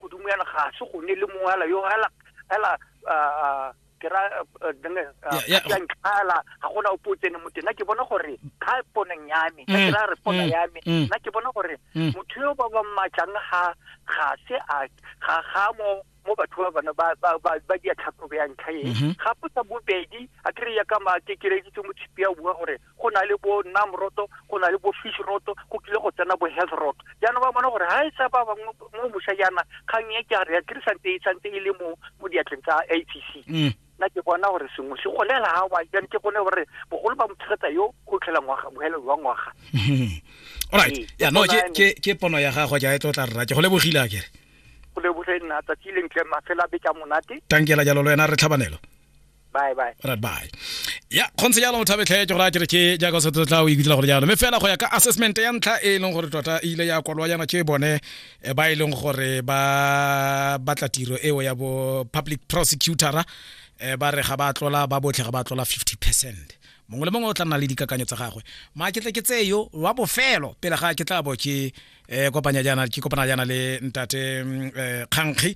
godimo yana ga se go ne le mongwe ala yo ala ala ke ra denge ala ga gona o potsene mo tena ke bona gore ka poneng ya me ka ke ra re pona ya me nna ke bona gore motho yo ba ba matlang ga ga se a ga ga mo mo batho ba bana ba ba ba ba di tlhatlhobe ya ntlha e ga potsa bobedi a kry ya ka ma ke kereditse mo tshipi ya bua gore go na le bo nam roto go na le bo fish roto go kile go tsena bo health roto jaanong ba bona gore ga e sa ba bangwe mo moša jaana kgang e ke a re ya tirisante e tshwanetse e le mo mo diatleng tsa a c c mm. nna ke bona gore sengwe se golela ga wa jane ke gone gore bogolo ba motshegetsa yo go tlhela ngwaga bohelelo wa ngwaga alright ee, ya no ke pono ya gago ja e tlo tla rra ke go lebogile a kere go lebogile nna tsatsi le ntle mafela be ka monate tankela jalo lo wena re tlhabanelo bye bye right bye ya kgontse jalo mothabe tlhae ke gore a kere ke jaaka o setse tla o ikutla gore jalo mme fela go ya ka assessment ya ntlha e e leng gore tota e ile ya kwalwa yana ke bone eh, ba e leng gore ba batla tiro eo ya bo public prosecutora eh, ba re ga ba tlola ba botlhe ga ba tlola 50 percent mongwe le mongwe o tla nna le dikakanyo tsa gagwe ma ke tle ke tseyo wa bofelo pele ga ke tla bo ke eh, kopanya jana ke kopana jana le ntate mm, eh, kgankgi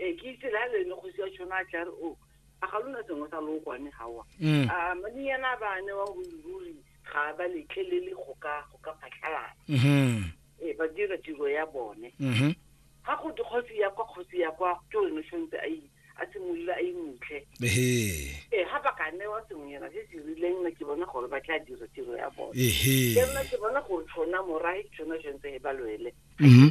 ee ke itse la lene kgosi ya tšhona a tla re o a ga lona sengwe sa lookwane gawa mm. a madinyana ba newa ruri ga ba letlelele go ka go ka phatlhalala mm-hmm. ee ba dira tiro ya bone ga mm-hmm. go te kgosi ya kwa kgosi ya kwa ke one tshwanetse a a simolole a imutlhe ee ga ba ka newa sengwenyana se se rileng na ke bona gore ba tla dira tiro ya bone ke nna ke bona gore tshona morae ke tshona tshwanetse e ba lwele mm-hmm.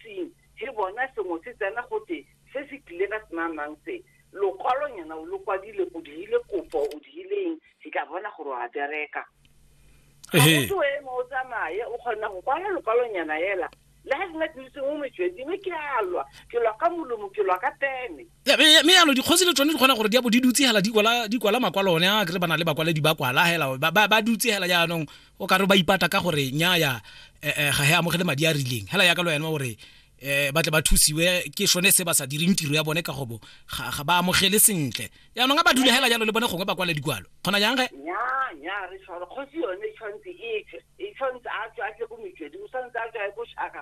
itseng he bona sengwe se tsena gote se se tlile ka senamang se lokwalonyana o lo kwadile o dirile kopo o dirile eng ke tla bona gore wa bereka gaoto eme o tsamaye o kgona go kwala lokwalonyana ela le ga nna ke itseng o metswedingwe ke alwa ke lwa ka molomo ke lwa ka pene mme yalo dikgosi le tsone di kgona gore di a bo di dutse hela di kwala di kwala makwalo one a kre ba na le bakwaledi ba kwala hela ba ba dutse hela jaanong o ka re ba ipata ka gore nya ya eh, eh, ga he amogele madi a rileng hela ya ka lo yena gore eh ba tle ba thusiwe ke shone se ba sa direng tiro ya bone ka gobo ga ba amogele sentle jaanong a ba dule hela jalo le bone gongwe ba kwale dikwalo kgona jang ge nya nya re tshwara kgosi yone e tshwanetse e tswe e tshwanetse a tswe a tle ko metswedi o tshwanetse a tswe a ko shaka